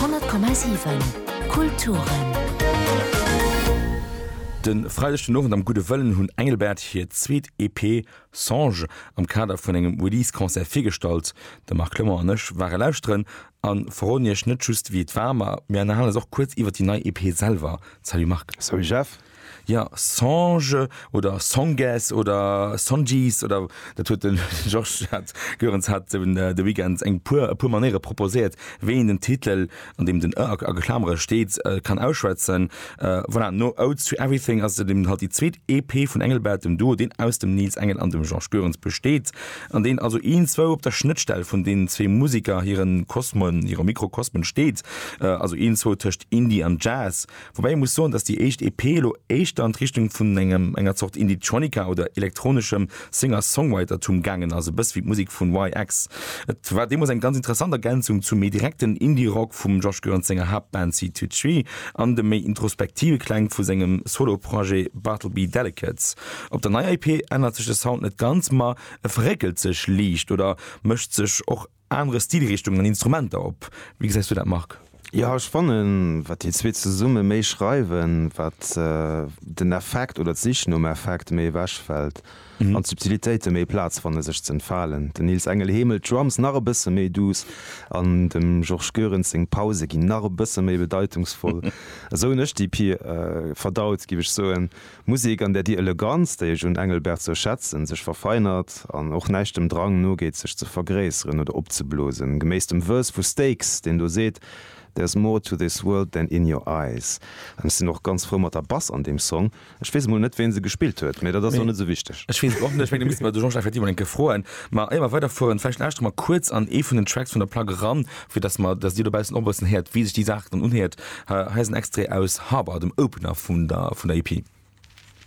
10,7 Kulturen. De Freideg den Owend am Gudde Wëllen hunn Engelbert hir zweet EP Songe am Kader vun engem Release-Concert virgestallt. De Marc Clement an ech ware lauschteren a verroden Iech net just wéi et war, ma mir ënnerhalen eis och kuerz iwwer déi nei EP selwer. Salut Marc. Salut Jeff. Ja, Songe oder Songes oder Songes oder dat huet den Georges hat Goerens hat de Weekend eng puer e puer Manéiere proposéiert, wéi een den Titel, an deem den ë a Klamere steet, kann ausschwätzen. Voilà, no Odes to Everything ass et eben halt déi zweet EP vun Engelbert, dem Duo, deen aus dem Nils Engel an dem Georges Goerens besteet, an deen also iergendzwou op der Schnëttstell vun deenen zwee Museker hire Kosmen, hire Mikrokosmen steet, also iergendzwou tëscht Indie an Jazz. Woubäi ee muss soen, datt déi éischt EP elo éischter an d'Richtung vun engem enger Zort Indietronica oder elektroneschem Singer-Songwritertum gaangen ass, e bësse wéi d'Musek vun YX. Et war deemools eng ganz interessant Ergänzung zum méi direkten Indie-Rock vum Josh Gurrent senger Haaptband Seed To Tree an de méi introspektive Kläng vu sengem Solo-Projet Bartleby Delicates. Op der neier EP ännert sech de Sound net ganz, ma e verréckelt sech liicht oder mécht sech och. anere Stilrichtungen an Instrumenter op. Wéi gesäis du dat Marc? Jo ech fannen wat déi zwee zesumme méi schreiwen, wat den Effekt oder d'Sich nom Effekt méi ewech fält an d'Subtilitéite méi Plaz fanne sech ze entfalen. Den Nils Engel heemelt d'Drums nach e bësse méi duuss an dem Georges Goerens seng Pause ginn nach e bësse méi bedeitungsvoll. Esou hunn ech d'EP verdaut giff ech soen. Musek, an där déi Eleganz, déi ech un Engelbert sou schätzen, sech verfeinert an och näischt dem Drang nogeet, sech ze vergréisseren oder opzeblosen, geméiss dem Verse vu Stakes, deen do seet, There's more to this world than in your eyes. An ech sinn och ganz frou mat der Bass an deem Song. Ech weess emol net, ween se gespillt huet, mee dat ass och net sou wichteg. Ech weess et och net, ech mengen, da misste mer de Jean-Jacques effektiv emol eng Kéier froen. Ma éier mer weiderfueren, vläicht lauschteren mer kuerz an ee vun den Tracks vun der Plack eran, Fir dass mer, dass Dir dobaussen och e bëssen héiert, wéi sech déi Saach dann unhéiert, hei ass en Extrait aus Harbor, dem Opener vun der, vun der EP.